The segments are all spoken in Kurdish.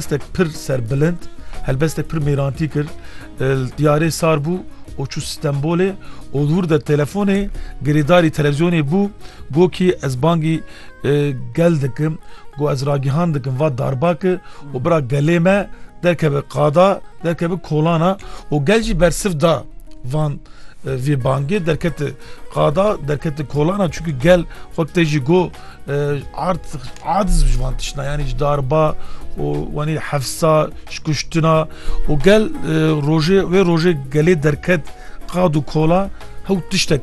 Helbestek pir serbilind, helbestek pir mêrantî kir. Li tiyarê sar bû û çû Stenbolê û li wir de telefonê girêdarî televîzyonê bû. Got kî ez bangî gel dikim, got ez ragihan dikim va darbake û bira gelê me derkeve qada, derkeve kolana û gel jî bersiv da van vê bangê derkete qada, derkete kolana çunkî gel xwe tê jî got. Ard ard ji van tişna yanî ji darba û wanî hefsa ji kuştina û gel rojê wê rojê gelê derket qad û kola hew tiştek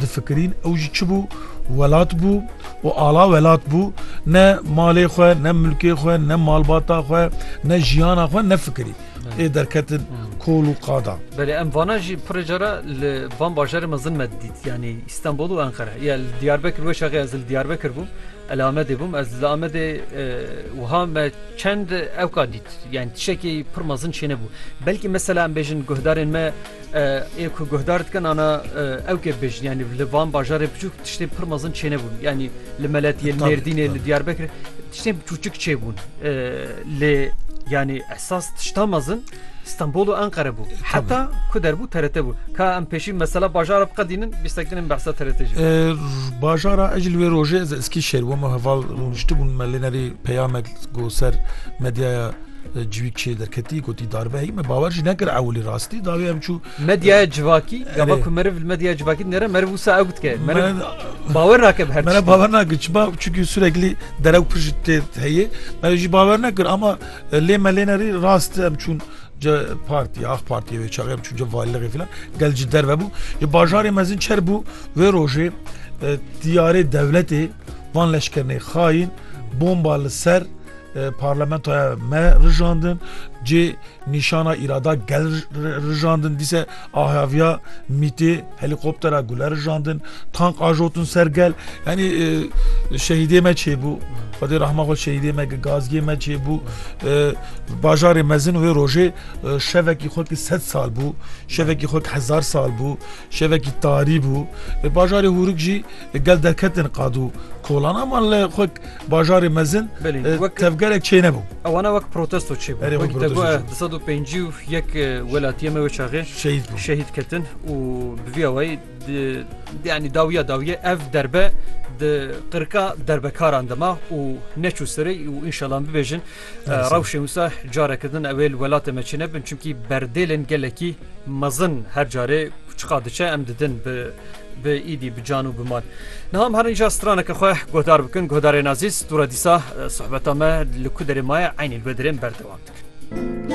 difikirîn ew jî çi bû welat bû û ala welat bû ne malê xwe ne milkê xwe ne malbata xwe ne jiyana xwe nefikirî ê derketin kol û qadan. Belê em vana jî pirê cara li van bajarê mezin me didît yanî Stenbol û Enqere ya li Diyarbekir we şaxê ez li Diyarbekir bûm el Amedê bûm ez li Amedê wiha me çend ewka dît yani tişekî pir mezin çêne bû belkî mesela em bêjin guhdarên me Ê ku guhdar dikin ana ew ke bêjin yanî li van bajarê biçûk tiştê pir mezin çênebûn yanî li meletiyê Mêrdînê li Diyarbekir tiştê çûçik çêbûn lê yanî esas tişta mezin Stenbol û Enqere bû heta ku derbû TRT bû ka em pêşî mesela bajara biqedînin bîstekdinin behsa TRT jî bajara ez li wê rojê ez eskî şêr bûm heval rûniştibûn me lê nerî peyamek ku ser medyaya Civîk çê derketî gotî darbe hî min bawer jî nekir ewilî rastî dawî em çû Medyaya civakî gava ku meriv li medyaya civakî dinêre meriv wisa ew dike meriv bawer nake bi her tiştî. Meriv bawer nake çima çunkî sureklî derew pir ji tê heye meriv jî bawer nekir ama lê me lê nerî rast em çûn ce partî ax partî wê çaxê em çûn ce valiliqê filan gel ji derve bû ji bajarê mezin çer bû wê rojê tiyarê dewletê van leşkernê xayîn bomba li ser Parlamentoya me rijandin cê nîşana îrada gel rijandin dîse ahaviya mîtê helîkoptera gule rijandin tank ajotin ser gel yanî şehîdê me çêbû Xwedê rehma xwe şehîdê me gazgê me çêbû bajarê mezin wê rojê şevekî xwe ki sed sal bû şevekî xwe hezar sal bû şevekî tarî bû bajarê hûrik jî Li gel derketin qad û kolan ama li xwe bajarê mezin tevgerek çê nebû. Ewana wek protesto çê di sed û pêncî û yek welatiyê me wê çaxê şehîd şehîd ketin û bi vî awayî yanî dawiya dawiye ev derbe di qirka derbekaran dima û neçû serê û înşalan bibêjin rewşên wisa careke din ew ê li welatê me çê nebin çimkî berdêlên gelekî Mezin her carê kuçiqa diçe em didin bi bi îdî bi can û bi mal. Niha em herinca straneke xwe guhdar bikin guhdarên azîz, dûra dîsa sohbeta me li ku derê maye eynî li vê derê em berdewam dikin.